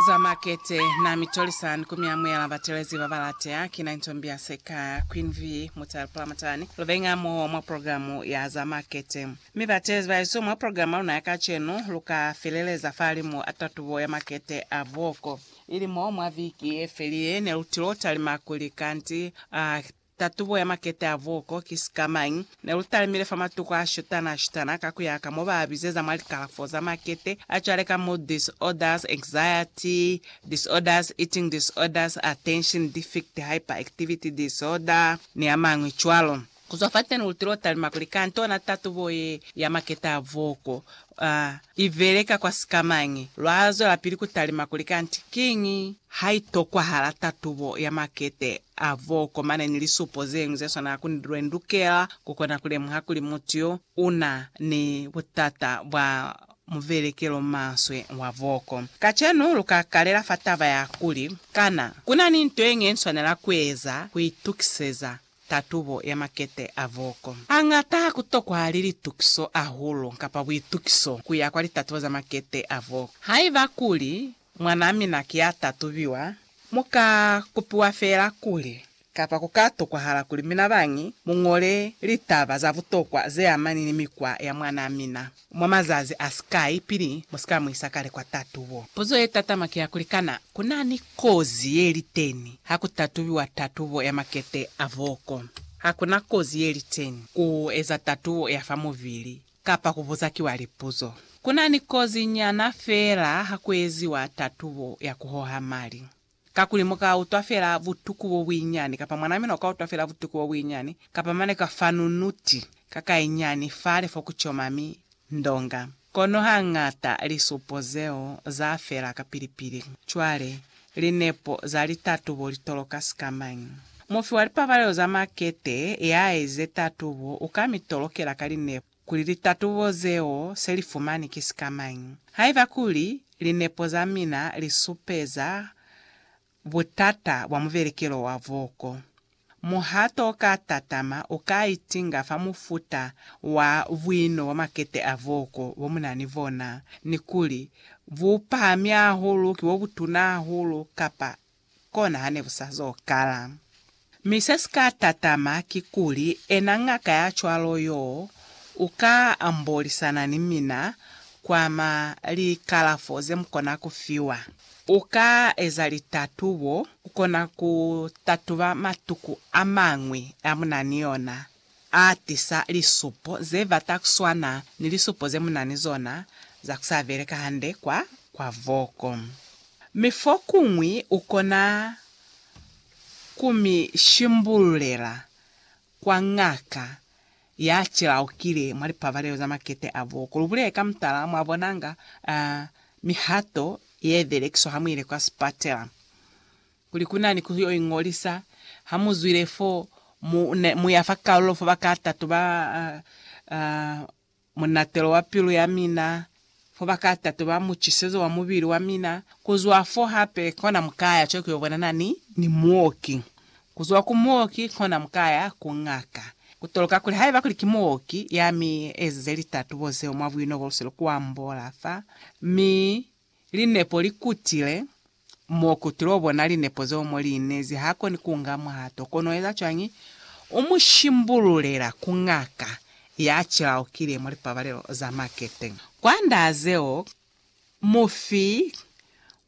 Za makete na mi tolisani ku mi amuela batelezi ba ba latea. Ki na Intombi ya Seka, Queen V. Mutale Pulamatani. Lu bengi hamoho mwa programu ya za makete. Mi batelezi ba hesu mwa programu ya luna ya kacenu, lu ka feleleza fahalimu a tatubo ya makete a buoko. Ili mo mwa viki ye feli ye, ne lu tilo talima kuli kanti a Tatubo ya makete a vuko ki sikamañi? Ne lu talimile fa matuku a shutana-shutana ka ku ya ka mo ba a bizeza mwa likalafo za makete a cwale ka mood disorders, anxiety disorders, eating disorders, attention defect, hyperactivity disorder, ni a mañwi cwalo. Ku zwa fateni lu tilo talima kuli kantona tatubo ye ya makete a vuko, uh, I beleka kwa sikamañi? Lwa zwelapili ku talima kuli kanti kiñi? Ha i tokwahala tatubo ya makete a bo komane ni lisupo ze ñwi ze swana ku ni lwe lukela ku kona ku lemuha kuli mutu yo u na ni butata bwa mubelekelo maswe wa boko. Kacenu lu ka kalela fa taba ya kuli, Kana ku na ni nto ye ñwi ye ni swanela ku eza ku itukiseza tatubo ya makete a voko. Hañata ha ku tokwahali litukiso hahulu kapa buitukiso ku ya kwa litatubo za makete a voko. Haiba kuli mwanaa mina ki ya tatubiwa, mu ka kupiwa feela kuli, kapa ku ka tokwahala kuli mina bañi mu ñole litaba za butokwa ze amani ni mikwa ya mwanaa mina. Mwa mazazi a sikai pili mu si ka mu isa kale kwa tatubo. Puzo ye tatama ki ya kuli, Kana ku na ni kozi ye li teñi ha ku tatubiwa tatubo ya makete a boko? Ha ku na kozi ye li teñi ku eza tatubo ya fa mubili kapa ku buza kiwa lipuzo. Ku na ni kozi nyana feela ha ku eziwa tatubo ya ku hoha mali. Kakuli mu ka utwa fela butuku bo buinyani, kapa mwan'a mina u ka utwa fela butuku bo buinyani, kapa mane ka fa nunuti ka kainyani fale fo ku coma mi ndonga. Kono hang'ata lisupo zeo za fela kapili-pili. Cwale, linepo za litatubo li toloka sikamañi? Mufi wa lipabalelo za makete ya aize tatubo u ka mi tolokela ka linepo. kuli litatubo zeo se li fumani ki sika mañi. Haiba kuli linepo za mina li supeza butata bwa mubelekelo wa voko, muhato o ka tatama u ka itinga fa mufuta wa buino bwa makete a voko bo mu na ni bona, ni kuli bu pahami hahulu, ki bo butuna hahulu, kapa kona hane ku sa zo kala. Mi se si ka tatama kikuli, ena ngaka ya cwalo yoo u ka ambolisana ni mina kwa ma likalafo ze mu kona ku fiwa. U ka eza litatubo, ku kona ku tatuba matuku a mañwi a mu na ni ona. A tisa lisupo ze bata ku swana ni lisupo ze mu na ni zona za ku sa beleka hande kwa kwa voko. Mi fokuñwi u kona ku mi shimbululela kwa ngaka ya cilaukile mwa lipabalelo za makete a voko. Lu bulele ka mutala, mwa bonanga, uh, mihato ye belekiswa ha mu ile kwa sipatela. Kuli ku na ni ku yo iñolisa, ha mu zwile fo, mu, mu ya fa kalulo fo ba ka tatu ba, uh, munatelo wa pilu ya mina, fo ba ka tatu ba mucisezo wa mubili wa mina. Ku zwa fo hape, kona mu ka ya cwale ku yo bonana ni, ni muoki. Ku zwa ku muoki, kona mu ka ya ku ngaka. Ku toloka kuli haiba kuli ki muoki ya mi ezize litatubo zeo mwa buino bo luselu, ku ambola fa, mi Linepo li kutile, M'o kutile o bona linepo zeo mo li inezi. Ha koni ku nga muhato. Kono u eza cwañi? U mu shimbululela ku ngaka ya cilaukile mwa lipabalelo za makete. Kwa nda zeo, mufi wa